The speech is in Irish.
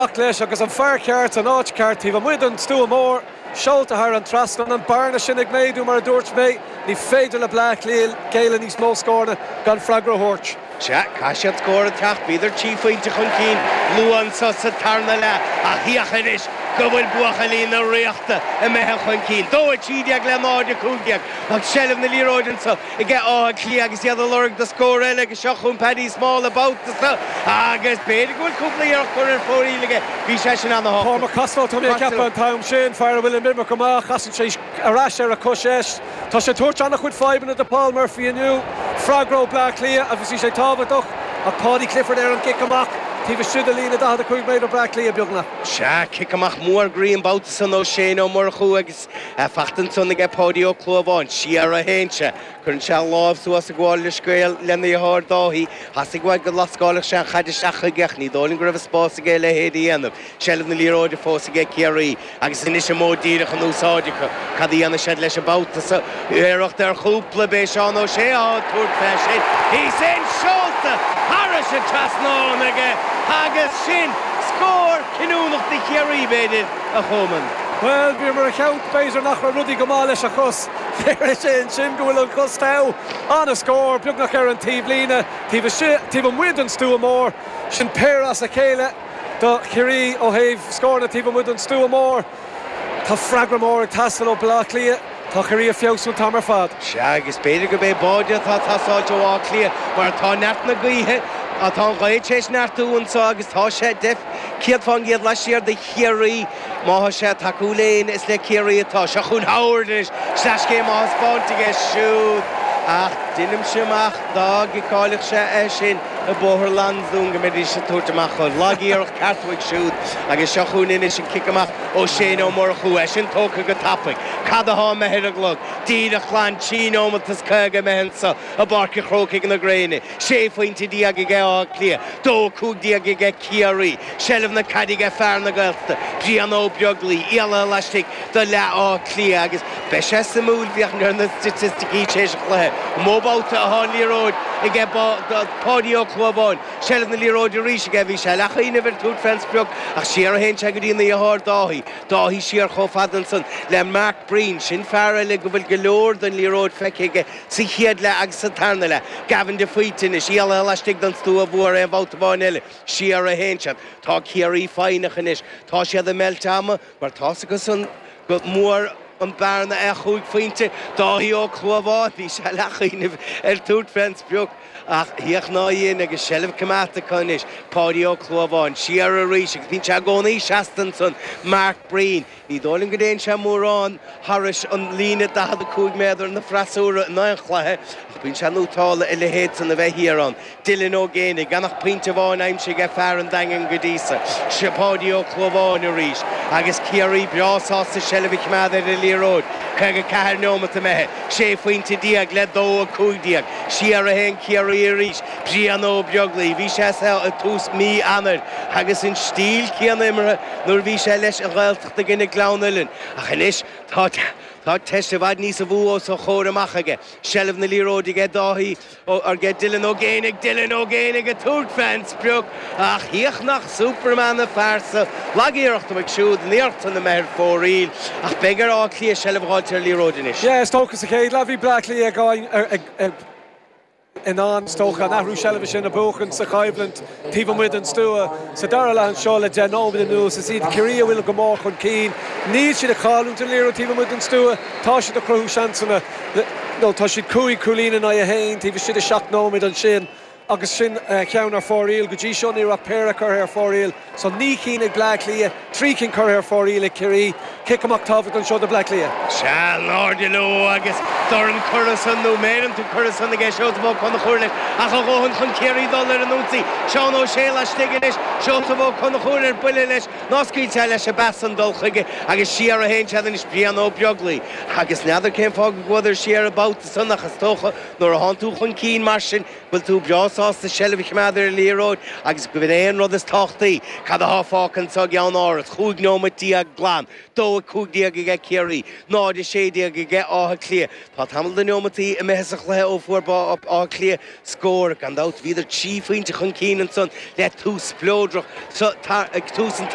Amach leis, agus an fear ceart san áit cheart taobh amuigh den stua mór, seolta thar an trasnán. An bearna sin ag méadú, mar a dúirt mé. Ní féidir le Bleá Cliath géilleadh níos mó, scóranna gan freagra a thabhairt. Sea, caithfidh siad scór a theacht, bhíodar trí phointe chun cinn luath anseo sa tarna leath ach féach anois go bhfuil buachaillí na Ríochta imithe chun cinn, dó 13 le 0, 15 ach seilbh na liathróide anseo. aige Áth Cliath agus iad a lorg do scór eile agus seo chugainn Paddy Small an babhta so agus b'fhéidir go bhfuil cúpla iarracht curtha ar fóraoil aige. Bhí seisean ana shásta. Cormac Costello Tá mé ag ceapadh an t-am sin, fear a bhfuil an iomarca amach, casann sé ar ais ar a chois dheis. Tá sé ag tabhairt ana chuid fadhbanna do Paul Murphy inniu. Freagra ó Bleá Cliath agus bhí sé tábhachtach ach Paudie Clifford ar an gcic amach taobh istigh de líne 45 méadar Bleá Cliath beagnach. Sea, cic amach mór groí an babhta san ó Shane Ó Murchú agus. É fachta ansan aige Páidí Ó Clúmháin, siar a théann sé, cuireann sé an láimh suas ag gabháil leithscéal lena dheartháir Dáithí, theastaigh uaidh go lascálfadh sé an chaid isteach chuige ach ní dóigh liom go raibh an spás aige a leithéid a dhéanamh, seilbh na liathróide fós aige ag Ciarraí agus anois an modh díreach in úsáid acu. Cad a dhéanfaidh siad leis an babhta so? Iarracht ar chúpla b'é Seán Ó Sé ag tabhairt fé sin. He's in! Seolta thairis an trasnán aige agus sin scór cinniúnach do Chiarraí, b'fhéidir. a Choman. Bhuel, bhíomar ag ceapadh, b'fhéidir nach raibh rudaí go maith leis an chos. Léirigh sé ansin go bhfuil an chos togha, an-scór, beagnach ar an taobh líne, taobh istigh, taobh amuigh den stua mór. Sin péire as a chéile do Chiarraí ó thaobh scóranna taobh amuigh den stua mór. Tá freagra mór ag teastáil ó Bhaile Átha Cliath. Tá Ciarraí ag feabhsú an t-am ar fad. Sea, agus b'fhéidir gurb é báide atá ag teastáil ó Áth Cliath, mar tá neart na gaoithe, tá an ghaoth tar éis neartú anseo agus tá sé de 100 fán gcéad laistiar de Chiarraí. Má tá sé ag tacú le héinne, is le Ciarraí atá. Seo chugainn Howard anois, sleaschéim á thaispeáint aige siúd, ach deinimse amach dá gciceáilfeadh sé é sin i Bóthar Lansdún go mbeidís ag tabhairt amach dhó. Lagiarracht ceart uaidh siúd, agus seo chugainn anois an cic amach ó Shane Ó Murchú, é sin tógtha go tapaidh. Cad athá imithe ar an gclog? Díreach glan trí neomat is caoga imithe annso i bPáirc a' Chrócaigh na Gréine. Sé phointe déag aige Áth Cliath, dó cúig déag aige Ciarraí, seilbh na caide aige fear na Gaeltachta, Brian Ó Beaglaoi, éalaithe laistigh do leath Áth Cliath agus beidh sé suimiúil féachaint ar na staitisticí tar éis an chluiche. Mó babhta athá an liathróid aige Páidí Ó Clúmháin, seilbh na liathróide arís aige, bhí sé ag leathchuimhneamh ar thabhairt fén sprioc ach siar a théann sé go dtína dheartháir Dáithí, Dáithí siar chomh fada ansan le Mike Breen. Sin fear eile go bhfuil go leor den liathróid feicthe aige sa chéad leath agus sa tarna leath. Gavin de Faoite anois, éalaithe laistigh den stua mhór aon bhabhta amháin eile. Siar a théann siad. Tá Ciarraí foighneach anois. Tá siad ag meilt ama mar tá's acusan gur mór an bhearna é chúig phointe. Dáithí Ó Clúmháin, bhí sé ag leathchuimhneamh ar thabhairt fén sprioc. Ach thiocfadh ná dhian agus seilbh coimeádta acu anois, Páidí Ó Clúmháin, siar arís agus bíonn sé i gcónaí seasta ansan, Mark Breen. Ní dóigh liom go dtéann sé mórán thairis an líne 45 méadar an fhreasúra in aon chluiche ach bíonn sé nútrála a leithéid san a bheith thiar ann. Dylan Ó Géibheannaigh, gan ach pointe amháin aimsithe ag fear an Daingin go dtí so, is é Páidí Ó Clúmháin arís agus Ciarraí breá sásta seilbh a choimeád ar an liathróid 54 neomat imithe. 6 phointe déag le dó a cúig déag. Siar a théann Ciarraí arís, Brian Ó Beaglaoich, bhí sé anso ag tús mí Eanáir agus an stíl céanna imeartha nuair a bhí sé leis an Ghaeltacht i gcoinne Gleann Uilinn ach anois tá teist i bhfad níos mó os a chomhair amach aige. Seilbh na liathróide aige Dáithí. Ar aghaidh go Dylan Ó Géibheannaigh Dylan Ó Géibheannaigh ag tabhairt fén sprioc, ach híoch nach Superman a phearsa, lag-iarracht uaidh siúd an iarracht san imithe ar fóraoil, ach beidh ar Áth Cliath seilbh a dh'fháilt ar an liathróid anois. Is dócha sa chéad leath bhí Bleá Cliath in ann, is dócha, an athrú seilbhe sin a bhuachaint sa choimhlint. Taobh amuigh den stua, sa dara leath anseo, le deich nóiméad anuas, is iad Ciarraí a bhfuil go mór chun cinn. Níl siad ag cailliúint an liathróid taobh amuigh den stua, tá siad ag cruthú seansanna, nó tá siad cúig chúilín in aghaidh a haon taobh istigh de sheacht nóiméad ansin, agus sin ceann ar fóraoil. Go dtí seo, ní raibh ach péire curtha ar fóraoil, so naoi cinn ag Bleá Cliath. Trí cinn curtha ar fóraoil ag Ciarraí, cic amach tábhachtach anseo do Bhleá Cliath. Seo in airde leo agus dorn curtha san, nó méireanta curtha san, ag Seosamh Ó Conchúir leis, ach a dhóthain chun Ciarraí dul ar an ionsaí. Seán Ó Sé laistigh anois, Seosamh Ó Conchúir ar buile leis, ná scaoiltear leis an bpas san dul chuige, agus siar a théann siad anois, Brian Ó Beaglaoich. Agus n'fheadar cén fáth go gcuadar siar an babhta san, ach is dócha nuair a thánn tú chun cinn mar sin, bhfuil tú breá sásta seilbh a choimeád ar an liathróid agus gurb in é an rud is tábhachtaí, cad atá fágtha anso i gCeannáras, 15 neomat glan, 2:15 aige Ciarraí, 0:16 aige Áth Cliath. Tá tamall de neomataí imithe sa chluiche ó fuair Áth Cliath scór. Gan dabht bhíodar trí phointe chun cinn ansan le tús spleodrach ag tús an